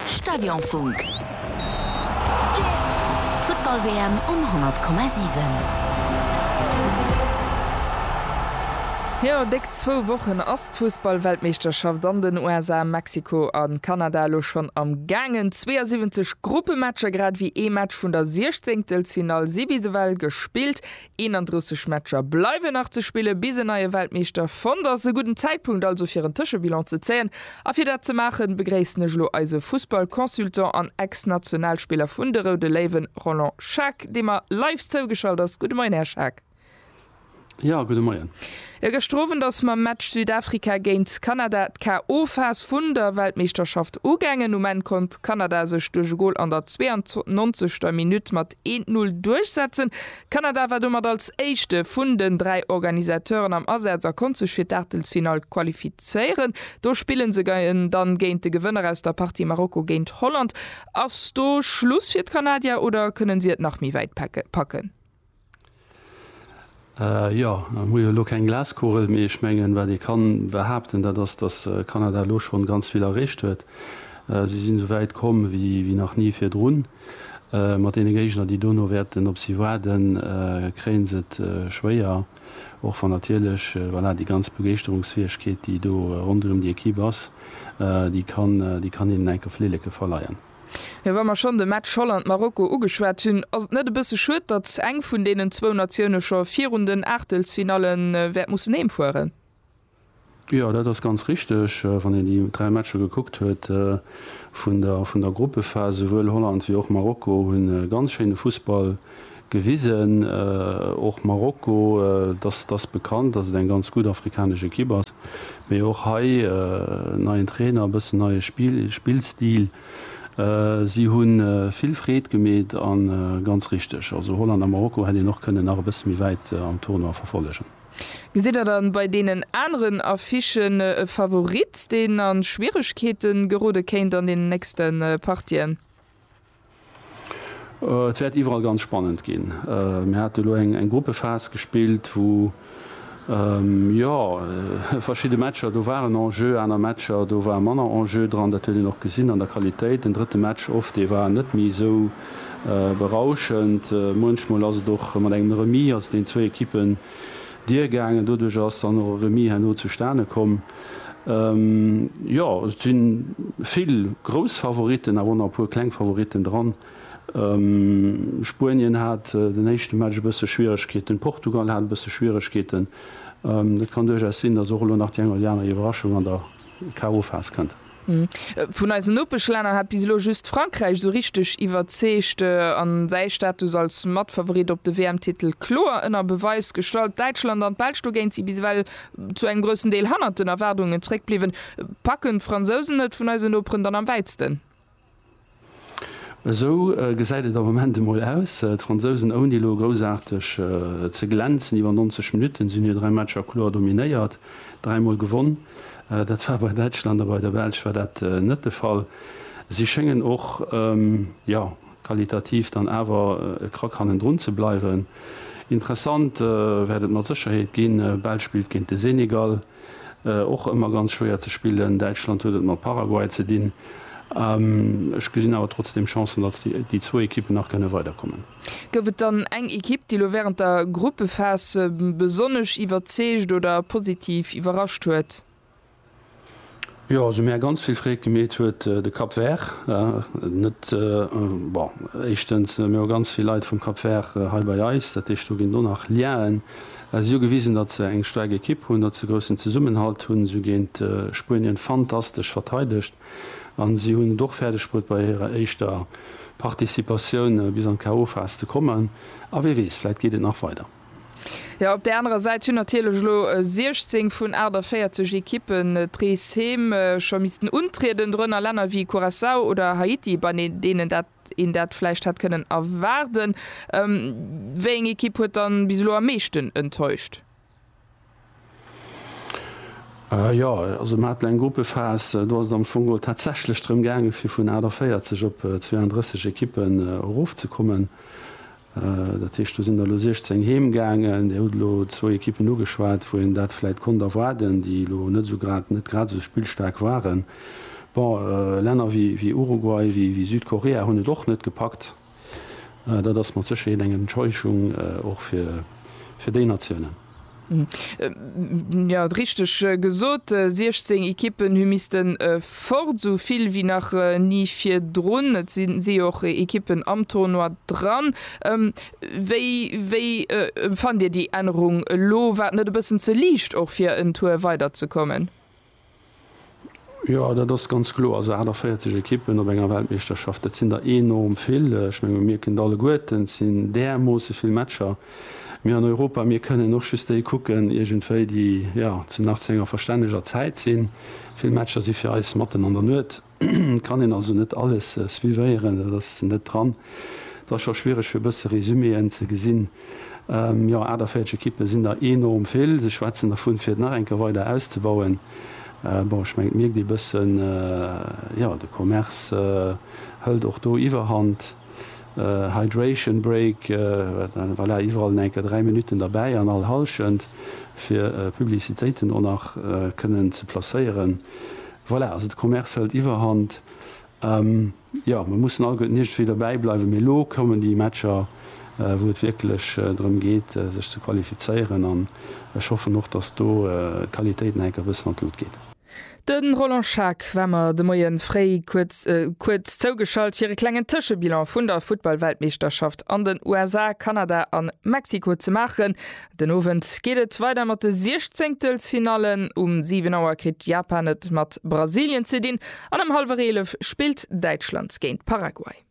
Stadionfunk. D'Futtball-WM um 100,7. Jo, déck zwou Wochen ass d'Fussball-Weltmeeschterschaft an den USA, Mexiko a Kanada elo schonn am gaangen. 72 Gruppematcher, grad ewéi ee Match vun der Siechzéngtelsfinall, si bis ewell gespillt. 31 Matcher bleiwen nach ze spillen, bis en neie Weltmeeschter fonnt ass. E gudden Zäitpunkt also fir en Tëschebilan ze zéien. A fir dat ze maachen, begréissen ech elo eise Fussball-Consultant an Ex-Nationalspiller vun de Roude Léiwen, Roland Schaack, dee mer live zougeschalt ass. Gudde Moien, Här Schaack. Jo, gudde Moien. Jo, gëschter Owend ass mam Match Südafrika géint Kanada d'KO-Phas vun der Weltmeeschterschaft ugaangen. Um Enn konnt Kanada sech duerch e Gol an der 92. Minutt mat Eent Null duerchsetzen, kann et awer domat als éischte vun den dräi Organisateuren am Asaz a konnt sech fir d'Aachtelsfinall qualifizéieren. Do spillen se géien dann géint de Gewënner aus der Partie Marokko géint Holland. Ass do Schluss fir d'Kanadier oder kënnen si et nach méi wäit packen? Jo, ech hu jo elo keng Glaskugel, mee ech mengen, wat ee ka behaapten, dat ass, datt Kanada elo schonn ganz vill erreecht huet. Si sinn esou wäit komm wéi nach ni virdrun. Mat deene Géigner, déi dono wäerten op si waarden, kréien se et schwéier, och wann natierlech, voilà, déi ganz Begeeschterungsfäegkeet, déi do ronderëm déi Ekipp ass, déi kann hinnen enk of Lileke verleien. Jo, wa mer schonn de Match Holland-Marokko ugeschwat hunn, ass et net e bësse schued, datt eng vun deenen zwou Natioune scho virun den Aachtelsfinalle wäert mussen heem fueren? Jo, dat ass ganz richteg. Wann een déi dräi Matcher gekuckt huet vun der Gruppephas, souwuel Holland wéi och Marokko hu ganz schéine Fussball gewisen. Och Marokko, dass ass bekannt, dass et eng ganz gutt afrikanesch Ekipp ass, mee och hei neien Trainer, e bëssen neie Spillstil. Si hu vill Freed gemeet a ganz richteg, also Holland a Marokko hätt een och kënnen nach e bësse méi wäit am Tournoi verfollegen. Gesitt Der dann bei deenen aneren Affichen e Favorit, deen a Schwieregkeete gerode kéint an deenen nächste Partien? Et wäert iwwerall ganz spannend ginn. Mir haten elo eng Gruppephas gespillt, wou jo verschidde Matcher do waren en jeu, aner Matcher do war manner en jeu dran. Dat huet een och gesinn an der Qualitéit. Den drëtte Match of, dee war net méi esou berauschend. Muenchmol ass et och mat engem Remis, ass et den zwou Ekippen, Dier gaangen. Doduerch ass dann och e Remis herno zustane komm. Jo, et si vill grouss Favoritten, awer och nach e puer kleng Favoritten dran. Spuenien hat den éischte Match e bësse Schwieregkeeten, Portugal hat e bësse Schwieregkeeten. Et kann duerchaus sinn, datt och elo nach déi eng oder déi aner Iwwerraschung an der K.O.-Phas kënnt. Vun eisen Nopeschlänner hat bis elo just Frankräich esou richteg iwwerzeegt an säi Status als Matfavorit op de WM-Titel kloer ënner Beweis gestallt. Däitschland an d'Belsch dogéint si bis ewell zu engem groussen Deel hannert den Erwaardungen zeréckbliwwen. Packen d'Fransousen et vun eisen Noperen dann am wäitsten? Esou gesäit et am Moment emol aus. D'Fransousen, ouni elo groussaarteg ze glänzen, iwwer 90 Minutten sinn hir 3 Matcher kloer dominéiert, dräimol gewonn. Dat war bei Däitschland a bei der Belsch war dat net de Fall. Si schéngen och, jo, qualitativ dann awer e Krack hannendrun ze bleiwen. Interessant wäert et mat Sécherheet ginn, Belsch spillt géint de Senegal. Och ëmmer ganz schwéier ze spillen. Däitschland huet et mat Paraguay ze dinn. Ech gesinn awer trotzdeem Chancen, datt déi zwou Ekippen nach kënne weiderkommen. Gouf et dann eng Ekipp, déi elo wärend der Gruppephase besonnesch iwwerzeegt oder positiv iwwerrascht huet? Jo, also mär ganz vill Freed gemeet huet de Cap Vert net. Bon, éischtens mär hu ganz vill Leit vum Cap Vert hei bei eis, dat heescht do ginn do nach Liaen. Si hu gewisen, datt se eng staark Ekipp hunn, datt se groussen Zesummenhalt hunn. Si hu géint Spuenien fantastesch verteidegt a si hunn et och fäerdeg bruet bei hirer éischter Participatioun bis an d'KO-Phas ze kommen. A wee weess, vläit geet et nach weider. Jo, op där anerer Säit hunn natierlech elo 16 vun 48 Ekippen d'Rees heem scho missten untrieden, dorënner Länner wéi Curaçao oder Haiti, bei deenen een dat vläicht hätt kënnen erwaarden. Wéieng Ekipp huet dann bis elo am meeschten enttäuscht? Jo, also mer haten eng Gruppephas, do ass et am Fong geholl tatsächlech drëm gaangen, fir vun 48 op 32 Ekippen erofzekommen. Dat heescht, do sinn der elo 16 heem gaangen. Dir hutt elo zwou Ekippen ugeschwat, wou een dat vläicht konnt erwaarden, déi elo net esou grad, net grad esou spillstaark waren. Bon, Länner wéi Uruguay, wéi Südkorea hunn et och net gepackt. Dat ass mat Sécherheet eng Enttäuschung och fir déi Natiounen. Jo, richteg gesot, 16 Ekippen hu misste fort, esou vill wéi nach ni virdrun. Et si jo och Ekippen am Tournoi dran. Wéi empfannt Dir déi Ännerung elo? War et net e bëssen ze liicht och fir en Tour weiderzekommen? Jo, dat ass ganz kloer. Also 48 Ekippen op enger Weltmeeschterschaft, dat sinn der enorm vill. Ech menge mir kënnt alleguerten, et sinn därmoosse vill Matcher. Mir an Europa, mir kënnen och just déi kucken iergendwéi, déi, jo, zum Nach zu enger verstänneger Zäit sinn. Vill Matcher si fir eis matten an der Nuet. Kann een also net alles suivéieren, dat ass net dran. Et ass scho schwiereg fir e bësse Resuméen ze gesinn. Jo, 48 Ekippe sinn der enorm vill. Se schwätzen dervun, fir et nach eng Kéier weider auszebauen. Bon, ech mengen, et mierkt ee bëssen, jo, de Commerce hëlt och do Iwwerhand. Hydration break, voilà, iwwerall nach eng Kéier dräi Minutten derbäi an all Hallschent, fir Publicitéiten och nach kënnen ze placéieren. Voilà, also de Commerce hëlt Iwwerhand. Jo, mer mussen allguerten iergendwéi dobäi bleiwen, mee elo kommen déi Matcher, wou et wierklech drëm geet, sech ze qualifizéieren. An ech hoffen och, dass do d'Qualitéit nach eng Kéier e bëssen an d'Lut geet. De Roland Schaack war mer de Moie fréi kuerz zougeschalt fir e klengen Tëschebilan vun der Futtball-Weltmeeschterschaft an den USA, Kanada a Mexiko ze maachen. Den Owend geet et weider mat de Siechzéngtelsfinallen. Um 7 Auer kritt Japan et mat Brasilien ze dinn an ëm hallwer 11 spillt Däitschland géint Paraguay.